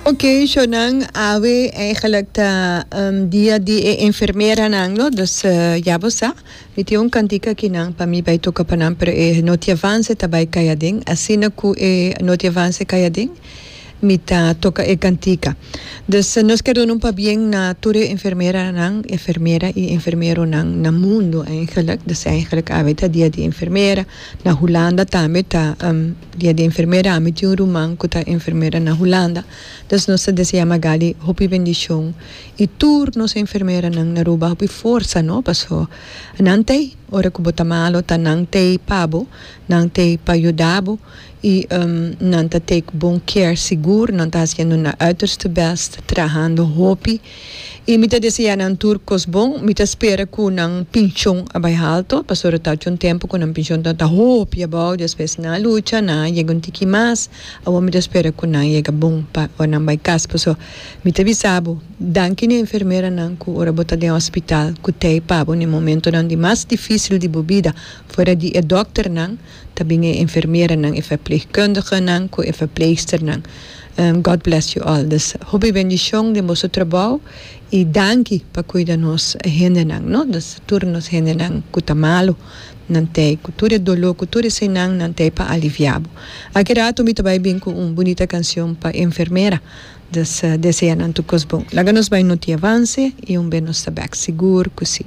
Ok, sho nan awe eigenlijk ta um, dia di e enfermeranan lo, dus eh, ya bo sa. Mi tin un kantik aki nan pa mi bai toka pa nan, pero e noti avance ta bai kai aden. Asina ku e noti avance kai aden, mi ta toka e kantika. Dus eh, nos ker duna un pabien na tur e enfermeranan, enfermera i enfermeronan na mundu eigenlijk. Dus eigenlijk awe ta dia di enfermera. Na Hulanda tambe ta um. Dia di enfermera, mi tin un ruman cu ta enfermera na Hulanda, dus nos ta desea Magali hopi bendicion y tur nos enfermeranan na Aruba hopi forsa, no? Paso nan t'ei ora cu bo ta malo, ta nan t'ei pa bo, nan t'ei pa yuda bo y nan ta take bon care, sigur nan ta haciendo nan uiterste best, trahando hopi. Y mi ta desea nan tur cos bon. Mi ta spera cu nan pincion a bay halto, pasobra ta haci un tempo cu nan pincion ta ta hopi abao, despues nan a lucha, nan a yega un tiki mas. Awor mi ta spera cu nan yega bon pa ora nan bay cas. Por eso mi ta bisa bo, danki n'e enfermeranan cu ora bo ta den hospital cu t'ey pa bo n'e momentonan di mas dificil di bo bida, fuera di e dokternan, Ta bin e enfermeranan, e verpleegkundigenan ku e verpleegsternan. God bless you all. Dus hopi bendishon den boso trabou i danki pa kuida nos hendenan, no? Dus tur nos hendenan ku ta malu, nan ta ei ku tur e doló, ku tur eseinan, nan ta ei pa aliviá bo. Aki ratu mi ta bai bin ku un bunita kanshon pa enfermera. Dus deseá nan tur kos bon. Laga nos bai noti avanse i un be nos ta bèk sigur ku sí.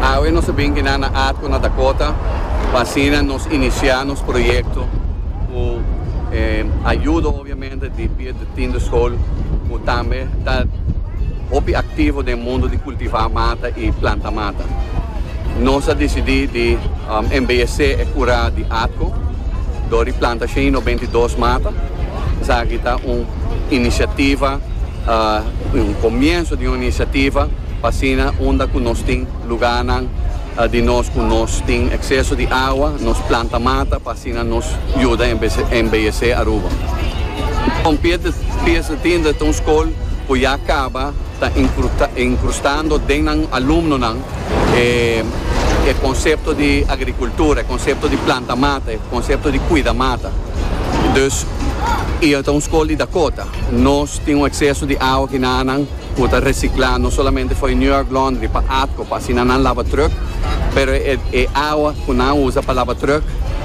Awe nos a bin kina na Atco na Dakota pa asina nos inicia nos proyecto cu e ayudo obviamente di Piet de Tiende School cu tambe ta hopi activo den mundo di cultiva mata y planta mata. Nos a dicidi di embellece e cura di Atco door di planta shen y nobentedos mata. Esaki ta un iniciativa, un comienzo di un iniciativa. Asina unda ku nos tin lugánan di nos ku nos tin ekseso di awa, nos planta mata pa asina nos yuda embeyesé Aruba. Kon pies di tinta ta un skol ku ya kaba ta inkrustando den nan alumnonan e konsepto di agrikultura, e konsepto di planta mata, e konsepto di kuida mata. Dus i ta un skol di Dakota. Nos tin un ekseso di awa kinanan. Cu ta recicla no solamente fo'i New York Laundry pa atco pa asina nan laba truck, pero e awa cu nan usa pa laba truck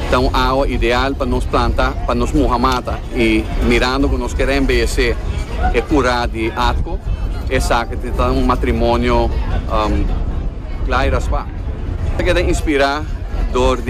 ta un awa ideal pa nos planta, pa nos muha mata y mirando cu nos quier embellece e cura di atco esaki ta ta un matrimonio cla y raspa. Keda inspira dor di.